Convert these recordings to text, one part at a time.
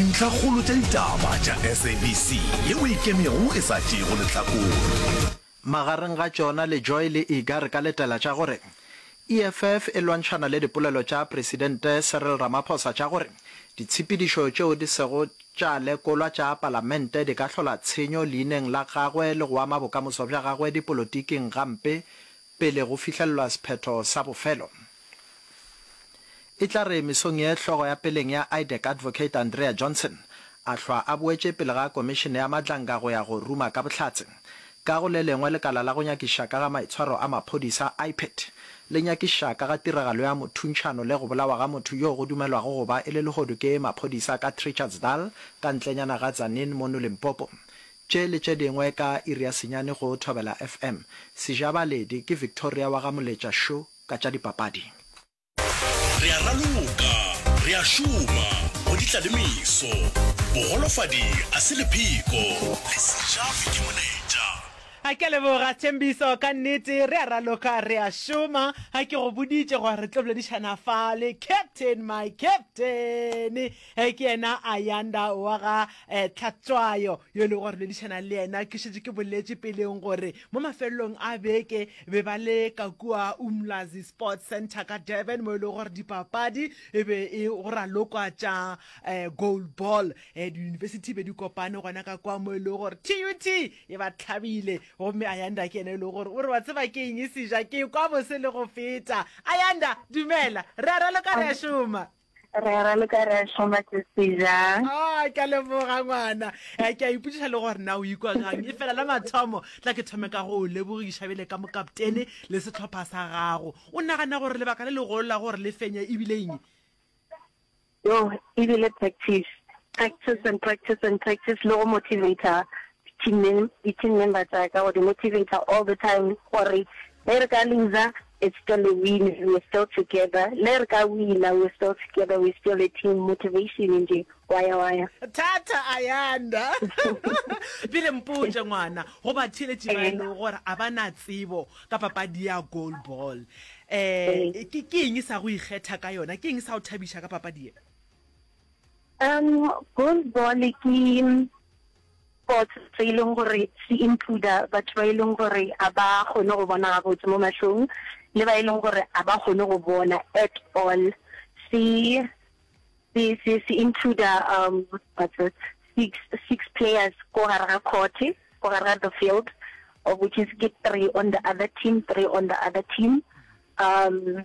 Dintlhakgolo tša ditaba tša SABC yeo e ikemego e sa tšeego lehlakore. Magareng ga tšona Lejoy le Iga re ka letela tša gore EFF e lwantšhana le dipolelo tša Presidente Cyril Ramaphosa tša gore ditshepedišo tšeo di sego tša lekolwa tša Palamente di ka hlola tshenyo leineng la gagwe le go ama bokamoso bja gagwe dipolotiking gampe pele go fihlellwa sephetho sa bofelo. E tla re mesong ye hlogo ya peleng ya IDEC Advocate Andrea Johnson a hlwa a boetše pele ga Komišene ya Matlanga go ya go ruma ka bohlatse. Ka go le lengwe lekala la go nyakiša ka ga maitshwaro a maphodisa, IPID, le nyakiša ka ga tiragalo ya mothuntšhano le go bolawa ga motho yo go dumelwago go ba e le lehodu ke maphodisa ka Trichardsdal ka ntlenyana ga Tzaneen mono Limpopo. Tše le tše dingwe ka iri ya senyane go Thobela FM. Sejabaledi ke Victoria wa ga Moletša Shoe. ka tša dipapadi. Re a raloka, re a šoma go di tla le meso. Bogolofadi a se lepheko, le sejafi ke moletša. A ke a leboga Thembiso, ka nnete re a raloka, re a šoma. A ke go boditše gore re tlo boledišana fa le captain, my captain. E ke yena Ayanda wa ga eh, Tlhatswayo yo e lego gore boledišana le yena. Ke šetše ke boletše peleng gore Mo mafelelong a beke be ba le ka kua Umlazi Sports Centre ka Durban mo e lego gore dipapadi e be e go ralokwa tša goal ball. Diyunibesithi be di kopane gona ka kua mo e lego gore TUT e ba tlhabile gomme Ayanda ke yena e lego gore o re wa tseba ke eng e seja ke kwa bose le go feta. Ayanda, dumela. Re a raloka re a šoma. Re ra le ka re a šoma tsese ja. Ah, ke a leboga ngwana. Eh, ke a ipotsiša le gore na o ikwa gang. E fela la mathomo, tla ke thome ka go o lebogiša bjale ka mokaptene le setlhopha sa gago. O nagana gore lebaka le legolo la gore le fenye e bile eng? Yo, e bile practice. Practice and practice and practice le go motivator team mem- di-team member tsa ka go di motivator all the time gore ge re ka loser It's still a win, we're still together, le re ka wina, we're still together, we're still a team, motivation nje, waya waya. Thata Ayanda. Pele mpotše ngwana go batheeletši ba e lego gore a ba na tsebo ka papadi ya goal ball. Eh ke ke eng sa go ikgetha ka yona? Ke eng sa go thabiša ka papadi ye? Um goal ball ke Sports se e leng gore se includa batho ba e leng gore ga ba kgone go bona gabotse mo mahlong le ba e leng gore ga ba kgone go bona at all se se se se includa um six six players ko gare ga court ko gare ga the field of which is ke three on the other team three on the other team um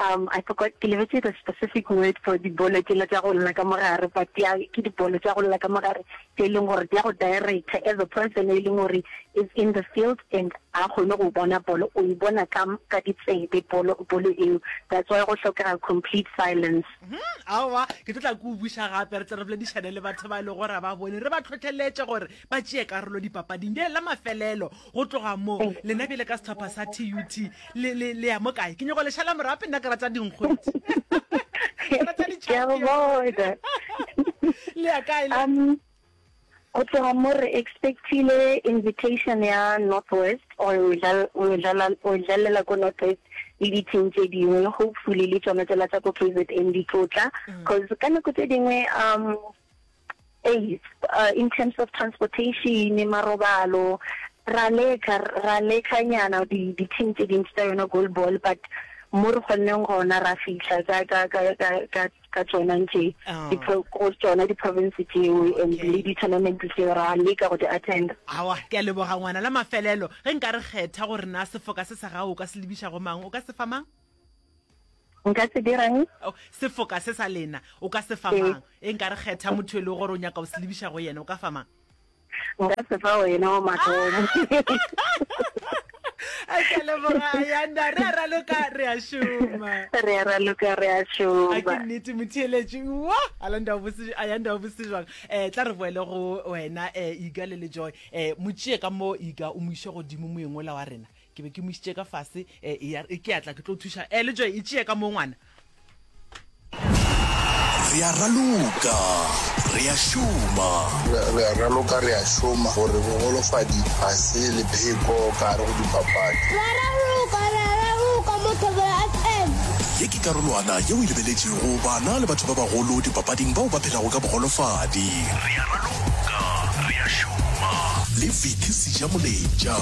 Um, I forgot, ke lebetse the specific word for dibolo tsela tša go lla ka mogare, but dia, ke dibolo tša go lla ka mogare tse e leng gore dia go director as a person e leng gore is in the field and a kgone go bona bolo, o e bona ka, ka ditsebe bolo, bolo eo. That's why go hlokega complete silence. Hmm, aowa, ke tlo tla ke o buša gape, re tle re boledišane le batho ba e lego gore ga ba bone, re ba tlhotlheletše gore ba tšee karolo dipapading. Bjale la mafelelo, Go tloga mo, lena bjale ka sehlopha sa TUT, le, le, le ya mo kae? Ke nyoko lešala morape, nna ke rata dinkgwetši. Ke rata di Ke a go bona. Le ya kae le? Um, go tloga mo re expectile invitation ya Northwest or o dlal- o dlala- o dlalela ko Northwest le dithing tše dingwe, hopefully le tšona tšela tša ko KZN di tlo tla, cause ka nako tše dingwe um Ee, in terms of transportation, marobalo, ra leka, ra lekanyana di-team tse dintsi tsa yona goal ball, but mo re kgonneng gona ra fitlha ka tsona ntse go tsona di-province tseo and le di-tournament tseo ra leka go di-attenda awa ke a leboga ngwana la mafelelo ge nka re kgetha gore na sefoka se sa gago o ka se lebiša go mang o ka se fa mang nka se dirang oh, sefoka se sa lena o ka se famang e nka re kgetha motho e le gore o nyaka o se lebiša go yena o ka famang nka se fa wena wa mathomo a ke leboga ayanda re a raloka re a šoma re a raloka re a šoma a ke nnete motheeletši wa ayanda o bose ayanda o bose jwang eh tla re boele go wena eh iga le le joy eh motšee ka mo iga o moiše godimo moeng ola wa rena Ke be ke mo isitše ka fase, e, e, ya re, Ke a tla, ke tlo thuša. E, le tšoe, e tšee ka moo, ngwana. Re a raloka, re a šoma. Re, re a raloka, re a šoma, gore bogolofadi ga se lepheko ka gare go dipapadi. Re a raloka, re a raloka mo Thobela FM. Ye ke karolwana yeo e lebeletšego bana le batho ba bagolo dipapading bao ba phelago ka bogolofadi. Re a raloka, re a šoma. Le Vicky Sejamoletša.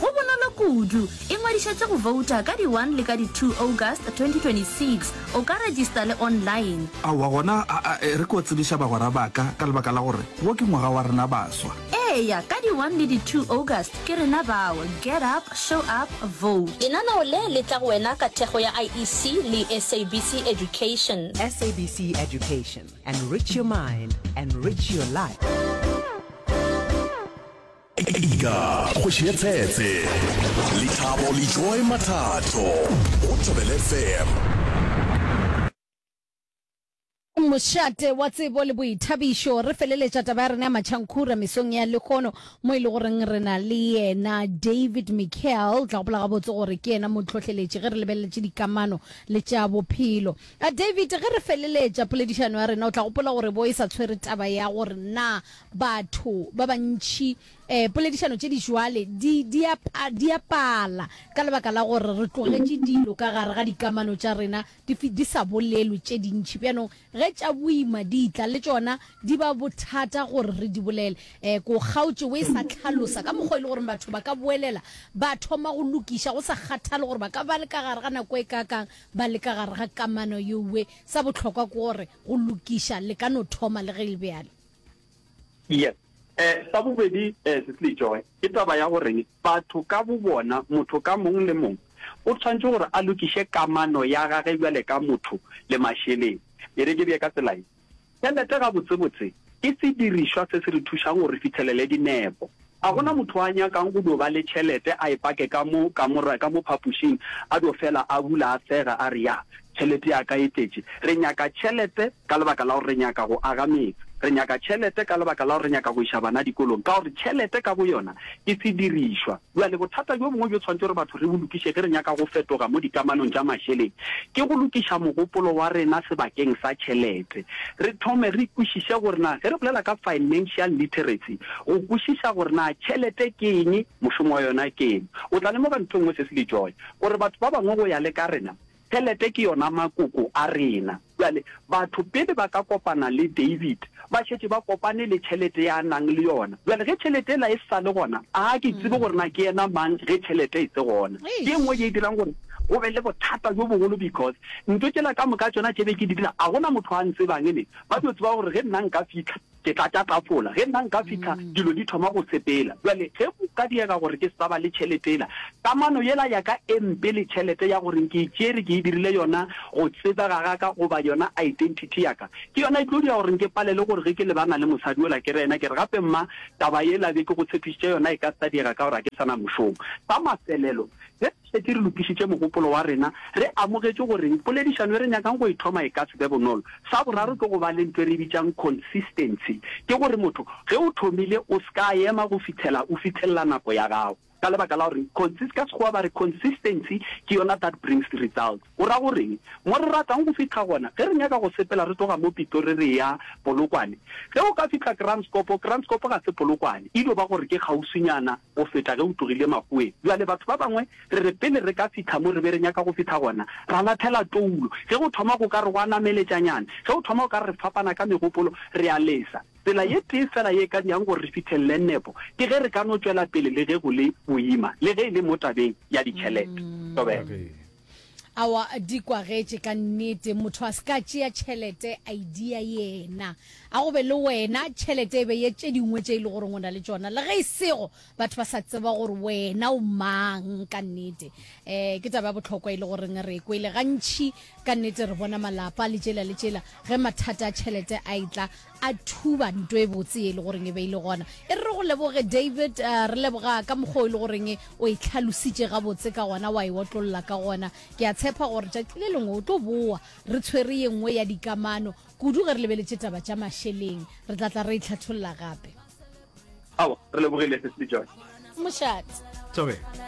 Go bonolo kudu. Ingwadišetše go vouta ka di one le ka di two August 2026. O ka regista le online. Aowa gona aa e re ko tsebiša bagwera baka ka lebaka la gore wo ke ngwaga wa rena baswa. Eya ka di one le di two August ke rena bao. Get up, show up, vote. Lenaneo le le tla go wena ka thekgo ya IEC le SABC Education. SABC Education, enrich your mind, enrich your life. Ika, kgoši ya tsetse, lethabo le joy mathatho go Thobele FM. Mošate wa tsebo le boithabišo. Re feleletša taba ya rena ya matšhankhura mesong ya lehono mo e le goreng re na le yena David Michael. O tla gopola gabotse gore ke yena mohlohleletši ge re lebeleletše dikamano le tša bophelo. A David, ge re feleletša poledišano ya rena o tla gopola gore bo e sa tshwere taba ya gore na batho ba bantši um poledišano tše di bjale di, di, a, di a pala ka lebaka la gore re tlogetše dilo ka gare ga dikamano tša rena di, di sa bolelwe tše dintši. Bjanong ge tša boima di tla, le tšona di ba bothata gore re di bolele. Um ke o kgaotše o e sa hlalosa ka mokgwa e le gore batho ba ka boelela ba thoma go lokiša go sa kgathale gore ba ka ba le ka gare ga nako e kaakang ba le ka gare ga kamano yeoe. Sa bohlokwa ke gore go lokiša le ka no thoma le ge e le bjalo. yes eh sa bobedi eh se tle joy ke taba ya gore batho ka bo bona motho ka mong le mong o tshwantse gore a lokiše kamano ya gage bjale ka motho le masheleng e re ke bje ka tsela e tšhelete ga botsebotse ke se dirišwa se se re thušang gore re fitlhelele dinepo Ga go na motho a nyakang go dio ba le tšhelete a e pake ka mo kamora, ka mo phapošing, a dio fela a bula a sega a re, Ya, tšhelete ya ka e tletše. Re nyaka tšhelete ka lebaka la gore re nyaka go aga metse. Re nyaka tšhelete ka lebaka la gore re nyaka go iša bana dikolong, ka gore tšhelete ka boyona ke sedirišwa. Bjale, bothata bjo bongwe bjo tshwanetše gore batho re bo lokiše ge re nyaka go fetoga mo dikamanong tša mašeleng, ke go lokiša mogopolo wa rena sebakeng sa tšhelete. Re thome re kwešiše gore na ge re bolela ka financial literacy, Go kwešiša gore na tšhelete ke eng, mošomo wa yona ke eng, o tla lemoga ntho e nngwe se se le joy, gore batho ba bangwe go ya le ka rena, tšhelete ke yona makoko a rena. Bjale, batho pele ba ka kopana le David, ba šetše ba kopane le tšhelete ye a nang le yona. Bjale, ge tšhelete yela e sa le gona, a ke tsebe gore na ke yena mang ge tšhelete e se gona. Ke ye nngwe ye e dirang gore go be le bothata bjo bogolo because ntho tšela ka moka tšona tše be ke di dira, a gona motho a ntsebang, ene ba tlo tseba gore ge nna nka fitlha, Ke tla tša tafola. Ge nna nka fihla, dilo di thoma go sepela. Bjale, ge go ka diega gore ke se sa ba le tšhelete yela, kamano yela ya ka e mpe le tšhelete ya gore nke e tšere ke e dirile yona go tsebega ga ka goba yona identity ya ka, ke yona e tlo dira gore nke palelwe gore ge ke lebana le mosadi yola ke re yena ke re, Gape mma, taba yela be ke go tshepišitše yona e ka se sa diega ka gore ga ke sa na mošomo. Sa mafelelo, ge. šetše re lokišitše mogopolo wa rena, re amogetše gore poledišano e re nyakang go e thoma e ka se be bonolo. Sa boraro ke go ba le ntho e re e bitšang consistency, ke gore motho ge o thomile o se ka ema go fihlela o fithelela nako ya gago, ka lebaka la gore consist, ka Sekgowa ba re consistency ke yona that brings results. O ra go reng? Mo re ratang go fihla gona, ge re nyaka go sepela re tloga mo Pitori re eya Polokwane, ge o ka fihla Kranskop, Kranskop ga se Polokwane, e dio ba gore ke kgauswinyana go feta ge o tlogile makgoweng. Bjale batho ba bangwe re re pele re ka fihla mo re be re nyaka go fihla gona, ra lathela toulo. Ge go thoma go ka re gwa nameletšanyana, ge go thoma go ka re re fapana ka megopolo, re a lesa. Tsela ye tee fela ye e ka dirang gore re fihlelele nepo ke ge re ka no tšwela pele le ge go le boima, le ge e le mo tabeng ya ditšhelete. Tobela. Awa di kwagetše ka nnete, motho a se ka tšea tšhelete a e dia yena. A go be le wena, tšhelete e be ye tše dingwe tše e le goreng o na le tšona, le ge e sego batho ba sa tseba gore wena o mang ka nnete. Um ke taba ya bohlokwa e le goreng re e kwele gantši. Ka nnete re bona malapa le tšela le tšela ge mathata a tšhelete a e tla, a thuba nto e botse e le goreng e be e le gona e re re go leboge david uh, re leboga ka mokgwa e le goreng o e tlhalositše gabotse ka gona wa e otlolola ka gona ke a tshepa gore tšatši le lengwe o tlo boa re tshwere ye nngwe ya dikamano kudu ge re lebeletše taba tša mašeleng re tla tla re e tlhatholola gape ao re lebogile se se jone mošate